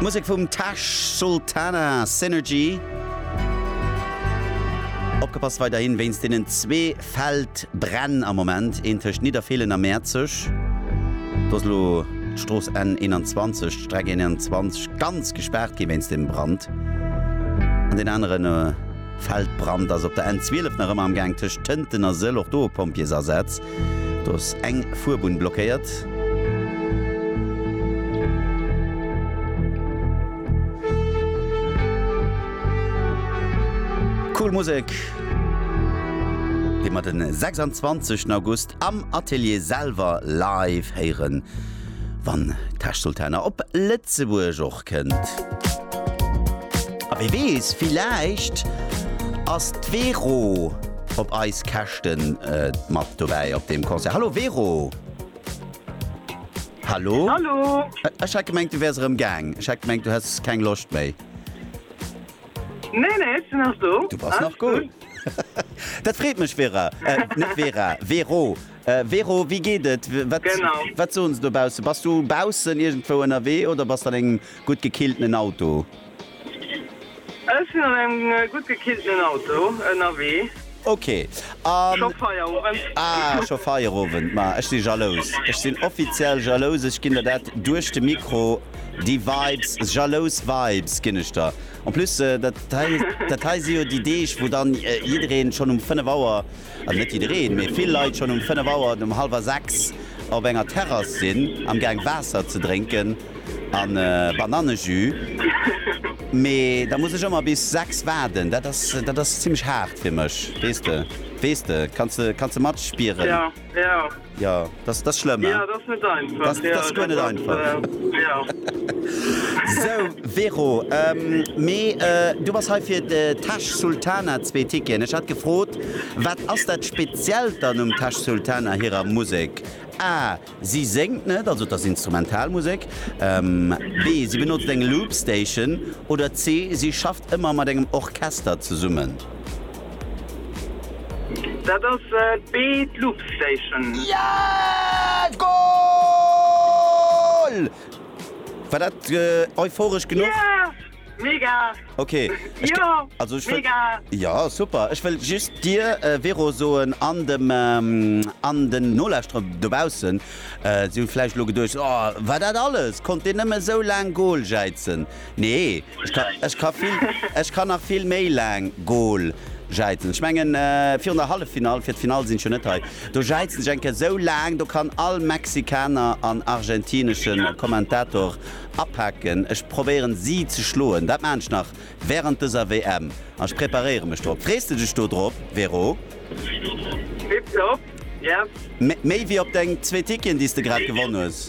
Musek vum Tash Sultana, Synergy. Opgepasst weiderhin wéinst deenen zwee Feldbränn am Moment, een tëscht Nidderfeelen a Mäerzeg. Do ass elo d'Strooss N 21, d'Streck N 21 ganz gespaart gi wéinst deem Brand. An deen anere Feldbrand ass op der N 12 nach ëmmer am Gaang tëscht Tënten a Sëll, och do e Pompjeesasätz. Do ass eng Fuerbunn blockéiert. Cool Musek, déi mer den 26 August am Atelier selwer live héieren, wann d'Täschsultana op Lëtzebuerg och. Kënnt. A wee weess, villäicht ass d'Vero op eis Käschten mat dobäi op deem Concert. Hallo Vero! Hallo? Hallo! Ech hat gemengt, du wäers erëm gaang. Ech hat gemengt, du häss keng Loscht méi. Nee, nee, ech sinn nach do. Du bass nach do. Dat freet mech, Vera. Net Vera, Vero. Véro, wéi geet et? Wat soen se dobaussen? Bass du baussen iergendwou ënnerwee oder bass du an engem gutt gekilltenen Auto? Ech sinn an engem gutt gekilltenen Auto ënnerwee. Ok, an. Scho Feierowend. Ah, scho Feierowend. Ma ech si jalous. Ech sinn offiziell jalous. Ech ginn der dat duerch de Mikro, déi Vibes, jalous Vibes ginn ech der. En plus, dat hei, dat hei si jo déi Deeg, wou dann jiddereen schonn um fënnef Auer. also net jiddereen, mee vill Leit schonn um 5 Auer an um hallwer 6 op enger Terrass sinn am gaang Waasser ze drénken an Banannejus, mee da muss ech ëmmer bis 6 waarden, dat ass dat ass zimlech haart fir mech, weess de, weess de, kanns de kanns de matspieren. Jo, dass dass schlëmm hein. Ja et ass net einfach. Dass dass ass guer net einfach. Ja. Sou Vero, mee du bass hei fir de Tesh Sultana zwee ticken. Ech hat gefrot, wat ass dat speziellt dann um Tesh Sultana hirer Musek? A, si séngt net, also et ass instrumental Musek. B, si benotzt eng Loop Station. Oder C, si schafft ëmmer mat engem Orchester zesummen. Dat ass d'Beat Loop Station. Yes! Goal! War dat euphoresch genuch? Yeah! Mega! Ok. Jo, mega! Jo, super! Ech wëll just dir, Vero, soen an dem an den Nolauschterer dobaussen, si hu vläicht elo geduecht, Oh, war dat alles? Konnt deen nëmme esou laang Goal jäizen? Nee, ech ka, ech ka vill, ech ka nach vill méi laang Goal jäizen. Ech mengen, virun der Halleffinall, fir d'Finall sinn ech jo net hei, do jäizen ech eng Kéier esou laang, do kann all Mexikaner an argentinesche Kommentator apaken. Ech probéieren, si ze schloen. Dat maachen ech nach während dëser WM an ech preparéiere mech drop. Frees de dech do drop, Vero? Tiptop, yes. Méi wéi op deng zwee Ticketen, déi s de grad gewonn hues?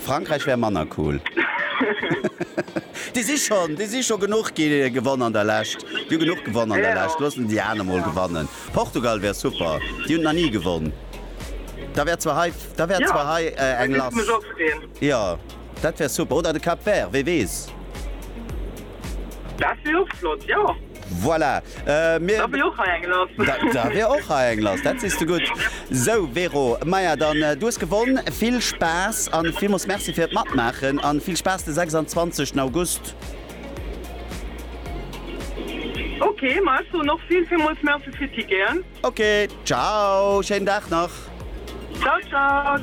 Frankräich wär manner cool. Déi si schonn, déi si scho genuch gi gewonn an der Lescht. Déi hu genuch gewonn an der Lescht. Looss en déi aner emol gewannen. Portugal wär super. Déi hunn et nach ni gewonn. Da wär zwar hei, da wär zwar hei eng lass. Jo, dat wär super. Oder de Cap Vert, wee weess. Dat wier och flott, jo. Voilà, mir. Da wier och hei eng lass. Da wier och hei eng lass, dat sees de gutt. Sou, Vero, maja dann, du hues gewonn. Vill Spaass a villmools Merci fir d'Matmaachen a vill Spaass de 26 August. Ok, ma ech soen och vill, villmools Merci fir d'Ticketen. Ok, ciao, schéinen Dag nach. Ciao, ciao.